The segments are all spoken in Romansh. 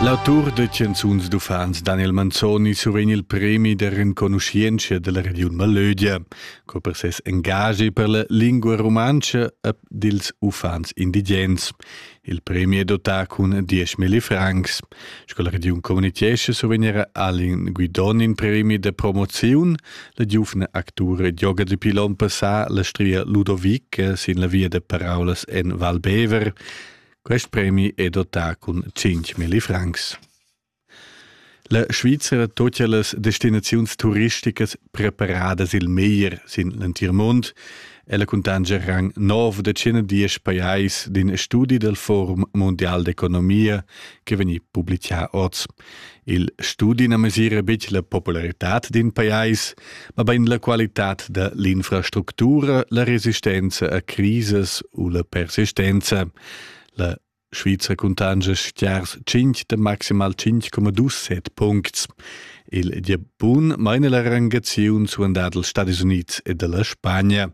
L'autur da chanzuns d'uffants Daniel Manzoni survegn il premi da renconuschientscha dalla regiun Malögia, co per ses engagi per la lingua rumantscha ed ils uffants indigens. Il premi è dotà cun 10.000 francs. Sco la regiun communitgescha survegnera Alin Guidon in premi de promoziun. La giuvna actura gioga di pilon passà la stria Ludovic sin la via de paraulas en Val Bever. Quest premi è dotà cun 5.000 francs. La Svizra tuttia las destinaziuns turisticas preparadas il meglier sin l'entir mund. Ella cuntanscha rang nov da tschena diesch pajais d'in studi dal Forum mondial d'economia che vegni publicà oz. Il studi na mesira betg la popularitad d'in pajais, ma bain la qualitad da l'infrastructura, la resistenza a crisis u la persistenza. La Schweizer cuntanscha stiars 5 de maximal 5,27 puncts. Il Diabun meine la rangaziun suandad dels Stadis Units e della Spagna.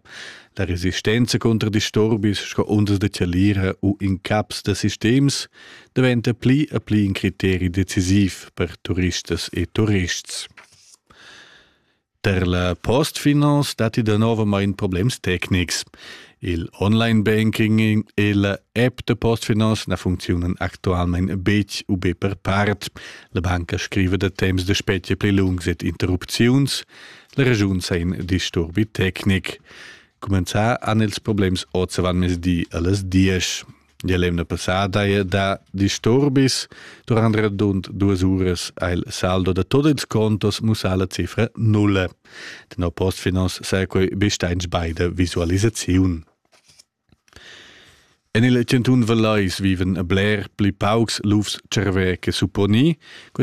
La resistenza contro disturbis sco undas de tialira u incaps de sistems diventa pli e pli in criteri decisiv per turistas e turists. Per la postfinance datti da novamain problems tecnics. Il online banking e la app da postfinance na funcziunan actualmain betg u be per part. La banca scriva da temps da spetga pli lungs ed interrupziuns. La regiun sa in disturbi tecnic. Cumenzà han ils problems oz avant mezdi a las dies. Die l'emna passada è da disturbis durant radund duas uras ha il saldo da tot ils contos mussà la cifra nulla. Den postfinance sa quei besteins beide visualisaziun. En il 101 Valleis viven a bler pli paucs lufs cervè che supponi, quei